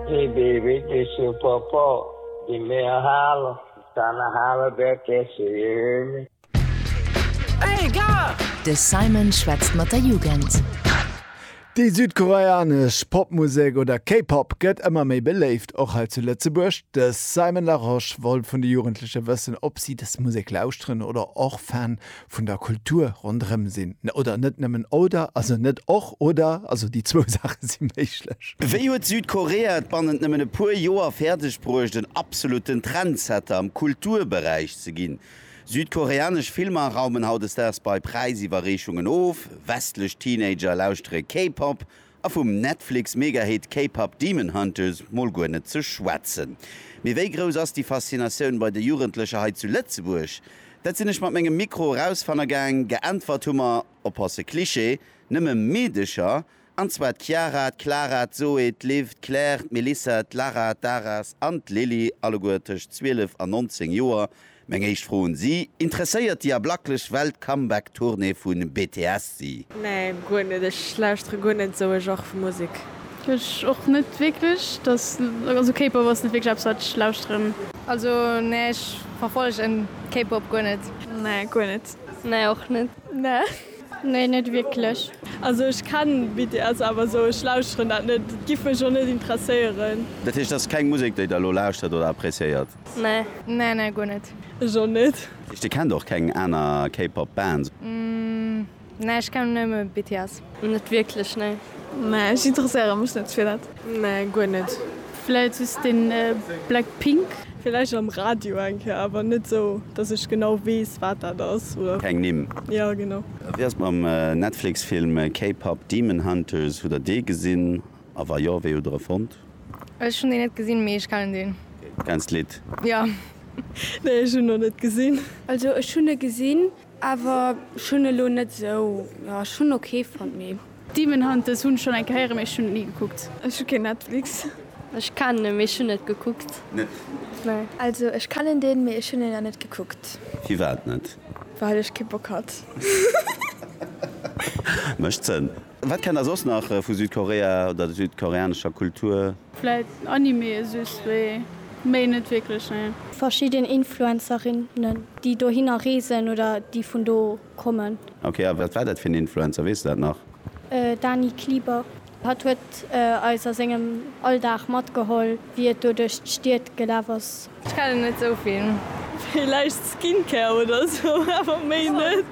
Hee bee wierklech de Papa dee mir hale kanne hale wäert dee se je hunn. De Simon schwätzt mat der Jugend. Déi südkoreanesch Popmusek oder K-Pop gëtt ëmmer méi beléift, och hei zu Lëtzebuerg. De Simon Larosche wollt vun de Jugendleche wëssen, ob si dës Musek lauschteren oder och Fan vun der Kultur ronderëm sinn, oder net nëmmen oder, also net och oder, also déi zwou Saache si méiglech. Wéi huet Südkorea et bannent nëmmen e puer Joer fäerdeg bruecht, en absolutten Trendsetter am Kulturberäich ze ginn? Südkoreanesch Filmer raumen hautdesdaags bei Präisiwwerreechungen of, westlech Teenager lauschtere K-Pop A vum Netflix-Megahit K-Pop Demon Hunters mol guer net ze schwätzen. Mee wéi grouss ass déi Faszinatioun bei de Jugendlecher hei zu Lëtzebuerg? Dat sinn ech mat mengem Mikro erausfanne gaang. Geäntwert hu mer, oppasse Cliché, nëmme Meedecher, an zwar d'Chiara, d'Clara, d'Zoé, d'Liv, d'Claire, d'Melissa, d'Lara, d'Aras an d'Lilly, alleguer tëscht 12 an 19 Joer. Meng éischt Fro un si, Interesséiert déi ablaklech Welt Comeback Tournée vun BTS si? Nee guer net, ech lauschtere guer net sou e Genre vu Musek. Ech och net wierklech, dass also K-Pop ass net wierklech eppes wat ech lauschteren. Also nee ech verfollegen K-Pop guer net. Nee guer net. Nee och net. Nee. Nee net wierklech. Also ech kennen BTS awer sou ech lauschteren dat net, et giff mech och net interesséieren. Dat heescht ass keng Musek déi der elo lauschtert oder appreciéiert? Nee. Nee nee guer net. Ech och net. Dir kennt och keng aner K-Pop Bands? Nee ech kennen nëmme BTS. Net wierklech nee. Nee ech interesséiere mech net fir dat. Nee guer net. Vläit just de Blackpink. Vläicht am Radio eng Kéier awer net sou dass ech genau weess wat dat ass oder. Keng Nimm? Jo genau. Wéi ass et mam Netflix Film K-Pop Demon Hunters, hutt der dee gesinn? A wa jo, wéi hutt der e fonnt? Ech hunn deen net gesinn, mee ech kennen deen. Okay, du kenns d'Lidd? Jo. Nee, ech hunn en nach net gesinn. Also ech hunn e gesinn, awer ech hunn e lo net esou, jo ech hunn en ok fonnt, mee. Demon Hunters hunn ech schonn eng Kéier héieren, mee ech hunn et ni gekuckt. Ech hu keen Netflix. Ech kennen en, mee ech hunn net gekuckt. Net? Nee. Also ech kennen deen, mee ech hunn en nach net gekuckt. Firwat net? Well ech kee Bock hat. Mécht Sënn. Wat kennt der soss nach vu Südkorea oder der südkoreanescher Kultur? Vläit Anime just, mee méi net wierklech, nee. Verschidden Influencerinnen, déi dohinner reesen oder déi vun do kommen. Ok, a wat war dat fir en Influencer, weess de dat nach? Dani Klieber. Hatt huet eis a sengem Alldag matgeholl, wéi et do duerch d'Stied gelaf ass. Ech kennen net sou vill. Villäicht Skincare oder sou, awer méi net.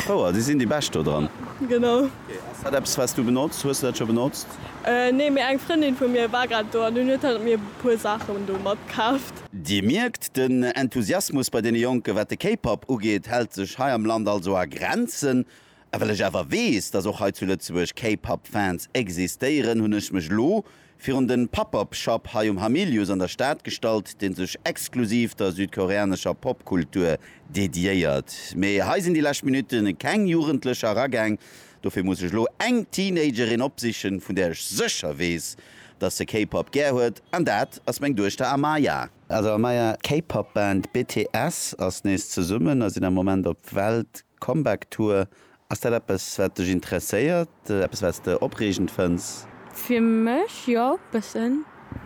Fouer, si sinn déi bescht do dran. Genau. Ass dat eppes wats du benotz? Hues du dat scho benotzt? Nee, mee eng Frëndin vu mir war grad do an dunn huet hatt mir puer Saachen do matkaaft. Dir mierkt, den Enthusiasmus bei deene Jonken, wat de K-Pop ugeet, hält sech hei am Land also a Grenzen. A well ech awer weess, dass och hei zu Lëtzebuerg K-Pop Fans existéieren, hunn ech mech elo virun den Pop-Up Shop hei um Hamilius an der Stad gestallt, deen sech exklusiv der südkoreanescher Popkultur dediéiert. Mee hei sinn déi lescht Minutte keng Jugendlecher eragaang, dofir muss ech elo eng Teenagerin opsichen, vun där ech sécher weess, dass se K-Pop gär huet, an dat ass meng Duechter Amaya. Also Amaya, d'K-Pop Band BTS ass nees zesummen a sinn am Moment op Welt Comeback Tour, Ass dat eppes wat dech interesséiert? Eppes wat s de opreegend fënns? Fir mech jo, bëssen.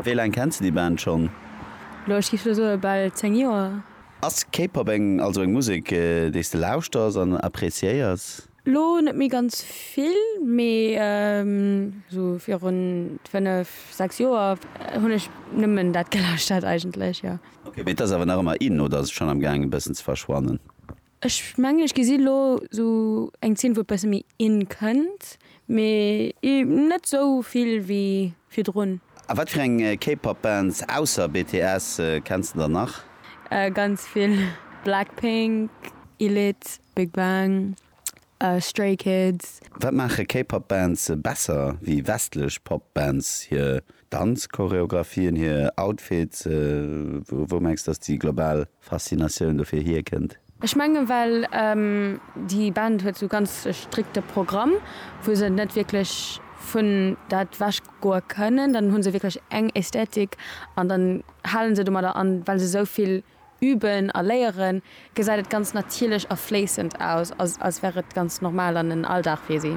Wéi laang kenns de déi Band schonn? Elo, ech géif elo soe bal 10 Joer. Ass K-Pop eng, also eng Musek déi s de lauschters an appreciéiers? Elo net méi ganz vill, mee esou virun 5, 6 Joer hunn ech nëmmen dat gelauschtert eigentlech, jo. Ok, mee et ass awer nach ëmmer in oder ass et schonn am gaang e bëssen ze verschwannen? Ech mengen ech gesi lo sou eng Zeen wou e besse méi in kënnt, mee net sou vill wéi virdrun. A wat fir eng K-Pop Bands ausser BTS kenns de dann nach? Ganz vill, Blackpink, Elite, Big Bang, Stray Kids. Wat maache K-Pop Bands besser wéi westlech Pop Bands? Hir Danzchoreographien, hir Outfits? Wou mengs dass déi global Faszinatioun dofir hier kënnt? Ech mengen well déi Band huet sou ganz e strikte Programm wou se net wierklech vun dat wech goe kënnen. Dann hunn se wierklech eng Ästhetik an dann halen se domadder an well se souvill Üben a léieren, gesäit et ganz natierlech a fléissend aus, als wär et ganz normal an en Alldag fir si.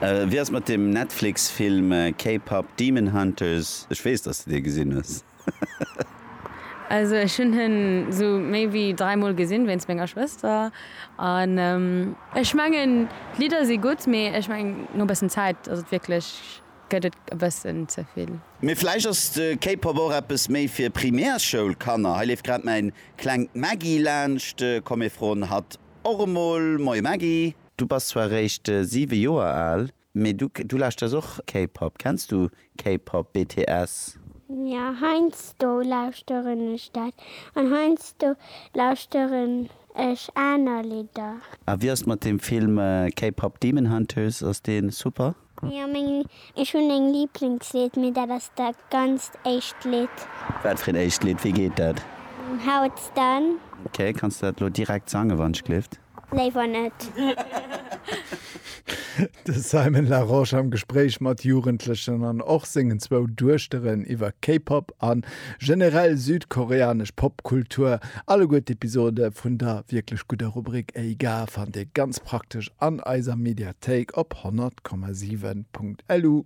Wéi ass et mat dem Netflix-Film K-Pop Demon Hunters? Ech weess, dass de dee gesinn hues. Also ech hunn en esou méi wéi dräi Mol gesinn, wéinst menger Schwëster. An ech mengen d'Lidder si gutt, mee ech mengen no e bëssen Zäit ass et wierklech. gëtt et e bëssen ze vill. Mee vläicht ass de K-Pop och eppes méi fir Primärschoulkanner. Hei leeft grad mäin klengt Maggie laanscht. Komm mir froen hatt och emol. Moie Maggie. Du bass zwar réischt 7 Joer al, mee du du lauschters och K-Pop. Kenns du K-Pop, BTS? Jo, heiansdo lauschteren ech dat. An heiansdo lauschteren ech aner Lidder. A wéi ass mat dem Film K-Pop Demon Hunters? Ass dee super? Jo meng ech hun eng Lieblingslied mee dat ass da ganzt éischt Lied. Wat fir een éischt Lied? Wéi geet dat? How it's done. Ok, kanns du dat elo direkt sangen wann ech gleeft? Léiwer net. De Simon Larosche am Gespréich mat Jugendlechen an och sengen zwou Duechteren iwwer K-Pop a generell südkoreanesch Popkultur. Alleguer d'Episode vun der wierklech gudder Rubrik Ey Ga fannt Dir ganz praktesch an eiser Mediathéik op 100,7.lu.